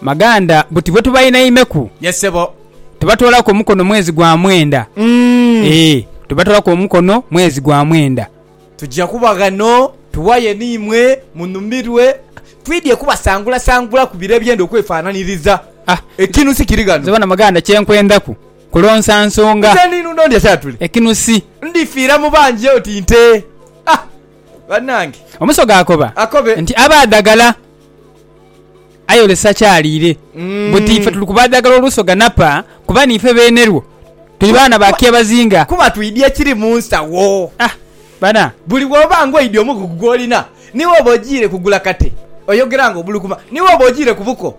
Maganda buti bwetubainainheku. Yes sebo. Tubatoolaku omukono mwezi gwa mwenda. Eeh tubatoolaku omukono mwezi gwa mwenda. Tuja kuba ghano tuwaye n'imwe munhumirwe. Twidhie kubasangulasangulaku bire ebyenda okwefaananiriza. Ekinusi kiri ghano. Nze bona Maganda kyenkwendaku kulonsa nsonga. Nze ninhundha ndya kya tuli. Ekinusi. Ndifiira mu bangi oti nte. banange. Omusoga akoba nti aba adagala ayolesa kyaliire buti ife tuli kuba adagala olusoga napa kuba niife beene lwo tuli baana ba kyebazinga. Kuba twidya ekiri mu nsawo. Ah bana. Buli bwoba nga oidya omugugu gwolina ni bwoba ojiire kugula kate oyogera nga obulukuma ni bwoba ojiire ku buko.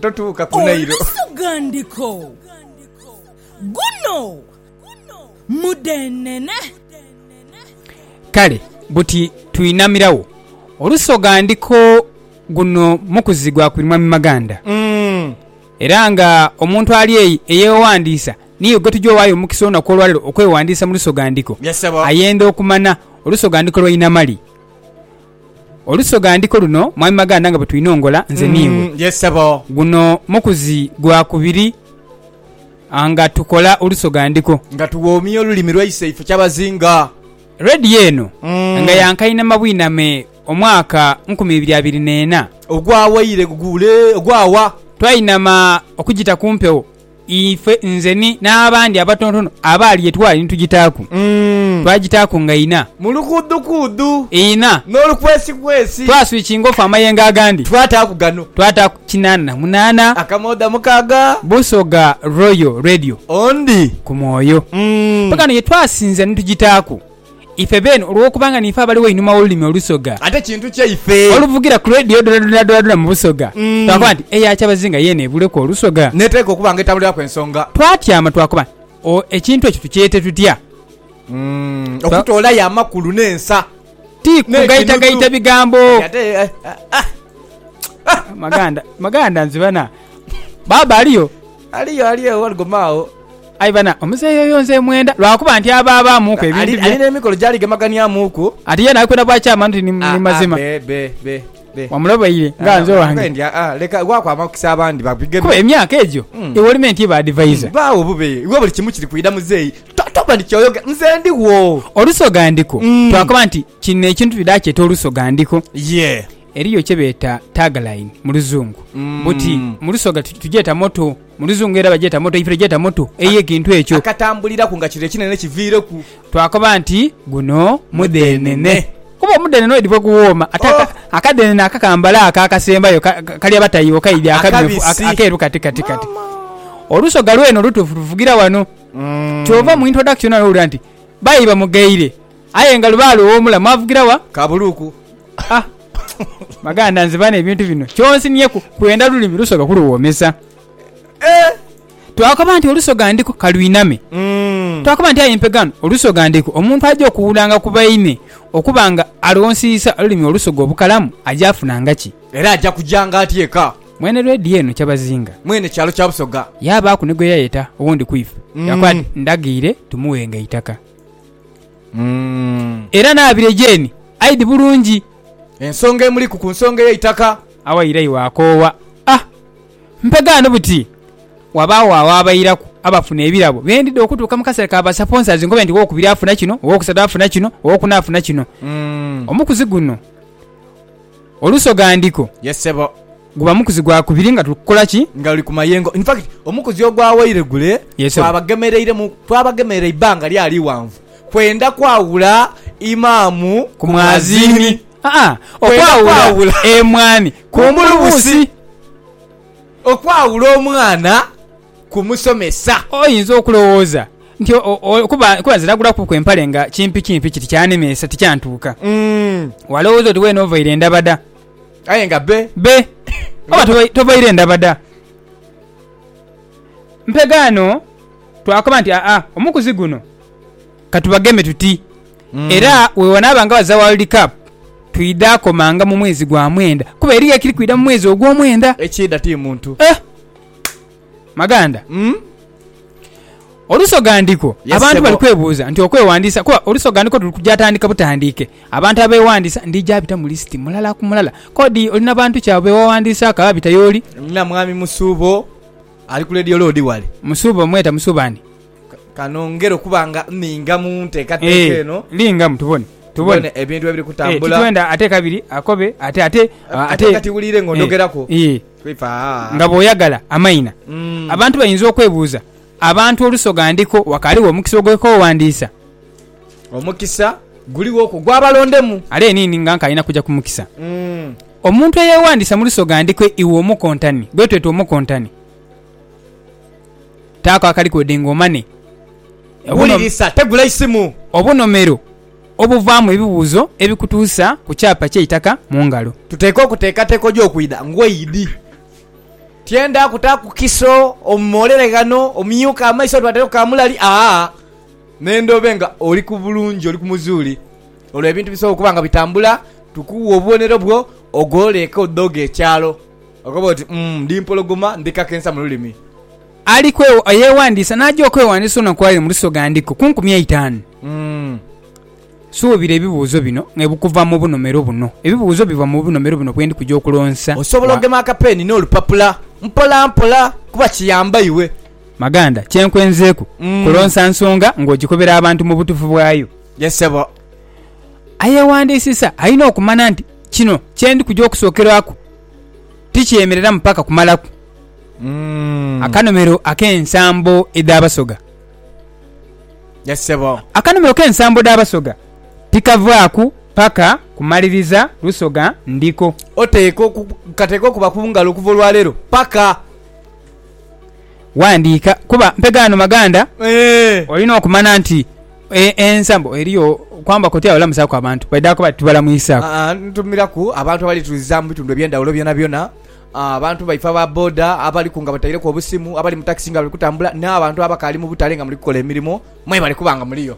totuuka ku Nailo. Olusughandhiko, Guno mudheenene. Kale buti twinamirawo olusoghandhiko guno mukuzi gwa kwiri Mwami Maganda era nga omuntu ali eyi eyewaghandiisa niye gwetugya owaayo omukisa olunaku olwaleero okwewandisa mu lusoghandhiko ayenda okumana olusoghandhiko lwa Inamali. Olusoghandhiko luno Mwami Maganda nga bwe twinongola nze n'iwe. Yes sebo. Guno mukuzi gwa kubiri nga tukola olusoghandhiko. Nga tuwoomya olulimi lwaise ife kyabazinga. Radio eno nga ya nkainama bwiname omwaka nkumi ibiri abiri n'ena. Ogwawaire guguule ogwawa. Twainama okugita ku mpewo. Ife, nze ni, n'abandi abatontono abaali gye twali ni tugitaaku. Twagitaaku nga ina. Mu lukuudukuudu. Ina. N'olukwesikwesi. Twaswikinga ofa amayengo agandi. Twataaku gano. Twataaku kinaana na munaana. Akamooda mukaaga. Busoga Royal Radio. Ondi. Ku mwoyo. Mpaka ghano ye twasinzira ni tugitaaku. Ife beene, olw'okuba nga niife abali wainuma w'olulimi olusoga, Ate kintu kyaife. oluvugira ku leediyo dhonadonadoona mu busoga, twakoba nti eya kyabazinga yeene ebuuleku olusoga. N'eteekwa okuba nga etambuliraku ensonga. Twatyama twakoba nti, O, ekintu ekyo tukyete tutya? Okutoolayo amakulu n'ensa. Ti kugaitagaita bigambo. Kati ate, eh, ah, ah, ah. Maganda, maganda nzibana. Baaba aliyo? Aliyo ali ewo aligema agho. Aye bana, omuzeeyi oyo nze mwenda, lwa kuba nti aba abaamuuku ebintu bye. Ali n'emikolo gy'aligemeganiamuuku. Ati yena ali kwenda bwa kyama nti ni mazima. Wamulobeire nga nze owange. Leka waaku amakisa abandi babigeme. Kuba emyaka egyo iwe oli menti iba adivaiza. Baawo obubeeyi, iwe buli kimu kiri kwidha muzeeyi. Toba nti ky'oyogera nze ndigho. Olusoga ndiko, twakoba nti kino ekintu twidha kyeta olusoga ndiko. Yee. Eriyo kye beeta tagline mu Luzungu buti mu Lusoga tugyeta motto, mu Luzungu era bagyeta motto, ife tugyeta motto ey'ekintu ekyo. Akatambuliraku nga kiro ekinene kiviireku. Twakoba nti, Guno mudheenene. Kuba omudheenene oidhi bwe guwooma ate akadheenene akakambale ako akasembayo kali abatayiiwo kaidhi akamyufu akeeru kati kati kati. Olusoga lwene olutuufu luvugira wano. Ky'ova mu introduction wano owulira nti, Baidhi bamugheire. Aye nga lubaale ow'omula mwavugira wa? Kabuluku. Ha! Maganda nze bano ebintu bino kyonsinhieku kwenda lulimi lusoga kuluwoomesa. Eh! Twakoba nti olusoga ndiku ka lwiname. Mm. Twakoba nti aye mpe ghano olusoga ndiku omuntu aja okuwulanga ku baine okuba nga aloonsiisa olulimi olusoga obukalamu aja afunanga ki? Era aja kujanga atya eka? Mwene leediyo eno Kyabazinga. Mwene kyalo kya Busoga. Yaabaaku ni gwe yayeta owundi ku ife. Mm. Yakoba ati, Ndaghiire tumuwenga eitaka. Era naabire gyeni aidhi bulungi. Ensonga emuliku ku nsonga ey'eitaka. Awaire iwe akoowa a mpegaano buti wabaagho agho abairaku abafuna ebirabo bye ndidha okutuuka mu kaseera ka basaponsazi nkobe nti owookubiri afuna kino, owookusatu afuna kino, owookuna afuna kino. Omukuzi guno olusogha ndiko. Ye ssebo. Guba mukuzi gwa kubiri nga tuli kukola ki? Nga luli ku mayengo. In fact, omukuzi ogwawaire gule twabagemereiremu, twabagemerera eibbanga lyali ighanvu kwenda kwawula Imaamu ku mwaziini, aa okwawula emwaani ku mbulubusi, okwawula omwana ku musomesa. Oyinza okulowooza nti kuba nze nagulakuku empale nga kimpikimpi kiti kyanemeesa tikyantuuka. Walowooza oti weena ovaire ndabada. Aye nga be. Be. Oba tovaire ndaba da mpegaano twakoba nti, Aa, omukuzi guno ka tubageme tuti. Era bwe wanaaba nga baza World Cup twidha komanga mu mwezi gwa mwenda kuba eriyo ekiri kwidha mu mwezi ogw'omwenda. Ekiidha ti muntu. Eh! Maganda, olusogandiko abantu bali kwebuuza nti okwewandiisa kuba olusogandiko luli kuja tandike butandiike. Abantu abeewandiisa ndija bita mu lisiti mulala ku mulala. Kodi oli na bantu ki abo be wawandiisaaku ababita y'oli? Nina Mwami Musuubo ali ku leediyo loodi wale. Musuubo? Mweta Musuubo ani? Ka nongere okuba nga nninga mu nteekateeka eno. Eeh, lingamu tubone, tubone. Tubone ebintu ebiri kutambula. Eeh, titwenda ate kabiri akobe ate, ate, ah, ate. Ate kati wuliire ng'ondhogeraku. Eeh, eeh. Twifa, ah. Nga bw'oyagala amaina. Mm. Abantu bayinza okwebuuza, Abantu olusoga ndiko wakaaliwo omukisa ogw'okwewandiisa? Omukisa guligho okwo gwa balondemu. Are eniini nga nkalina kuja ku mukisa. Mm. Omuntu eyewandiisa mu lusoga ndiko iwe omukontani, gwetweta omukontani. Taako akalikwede nga omane. Wulirisa, tegula eisimu. Obunomero obuvaamu ebibuuzo ebikutuusa ku kyapa ky'eitaka mu ngalo. Tuteeka okuteekateeka oje okwidha ng'oidhi. Tyenda kutaaku kiso omumoolere ghano omyuke amaiso twatereku kaamulali aa n'endha obe nga oli ku bulungi, oli ku muzuuli. Olwo ebintu bisobola okuba nga bitambula. Tukuwa obubonero bwo ogholeeke odhoghe ekyalo. Okoba oti, Umm, ndi mpologoma, ndi kakensa mu lulimi. Ali eyeghandiisa n'aja okweghandiisa olunaku lwa leero mu Lusoga ndiku ku nkumi eitaanu. Suubira ebibuuzo bino nga bikuva mu bunomero buno. Ebibuuzo biva mu bunomero buno bwe ndi kuja okulonsa. Osobola ogema akapeeni n'olupapula mpolampola kuba kiyamba iwe. Maganda, kye nkwenzeeku kulonsa nsonga ng'ogikobera abantu mu butuufu bwayo. Ye ssebo. Ayeghandiisisa alina okumanha nti. kino kye ndi kuja okusookerwaku tikyemereramu paka kumalaku akanomero ak'ensambo edh'Abasoga. Yes sebo. Akanomero k'ensambo dh'Abasoga tikavaaku paka kumaliriza Lusoga ndiko. Oteekwa oku, kateekwa okuba ku ngalo okuva olwaleero paka. Ghandiika, kuba mpe gano maganda. Olina okumana nti ensa mbu eriyo kwambaku oti abalamusaku abantu baidha kuba tibalamuisaku. Ntumiraku abantu abali tuliza mu bitundu ebyendhawulo byonabyona, abantu baife aba boda abaliku nga bataireku obusimu, abali mu takisi nga bali kutambula, n'abantu abakaali mu butale nga muli kukola emirimo mwebali kuba nga muliyo.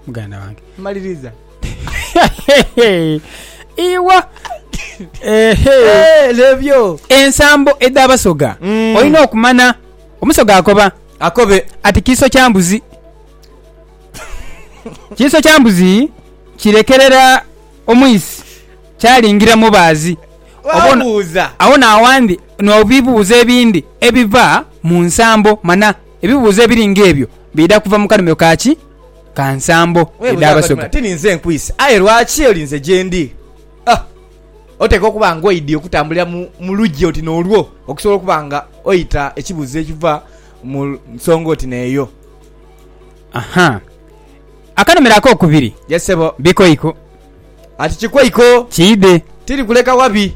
Muganda wange. Mmaliriza. Iwa! Eehee! Lebyo! Ensambo edh'Abasoga olina okumanha. Omusoga akoba. Akobe. Ati kiiso kya mbuzi. Kiiso kya mbuzi kirekerera omwisi kyalingira mubaazi. Wabuuza. Agho n'awandhi n'ebibuuzo ebindi ebiva mu nsambo. Manha ebibuuzo ebiri ng'ebyo biidha kuva mu kanhumiro ka ki? ka nsambo edh'Abasoga. Ti ninze nkwise, aye lwaki olinze gyendi? Ah! Oteekwa okuba nga oidhie okutambulira mu luggi oti n'olwo okusobola okuba nga oita ekibuuzo ekiva mu nsonga oti n'eyo. Aha! Akanhumiro ak'okubiri. Yes, sebo. Bikoiko. Ati kikoiko. Kiidhe. Tiri kuleka wabi.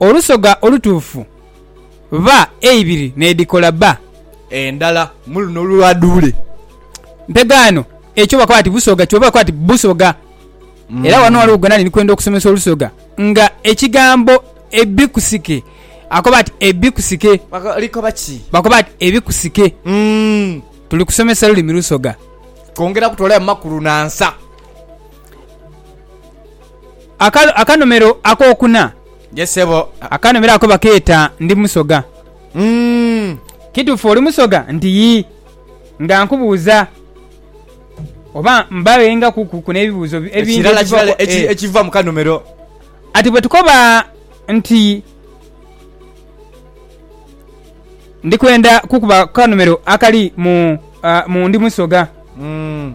Olusoga olutuufu ba eibiri n'edhikola ba. Endala mu luno lwa dhuule. Mpegaano ekyo bakoba ati busoga kyoba bakoba ati busoga. Era wano waliwo gwena ni kwenda okusomesa olusoga nga ekigambo ebikusike akoba ati ebikusike. Likoba ki? Bakoba ati ebikusike. Tuli kusomesa lulimi lusoga. Kwongera kutolayo makulu na nsa. Akanomero akokuna. Yes sebo. Akanomero ako bakeeta ndi musoga. Mm. Kitufu oli musoga? Nti yi. Nga nkubuuza oba mbawenga kuku nebibuuzo ebindi ekiva eh. mukanomero. Ati bwetukoba nti ndi kwenda kukuba kukanomero akali mu, uh, mu ndi musoga. Mm.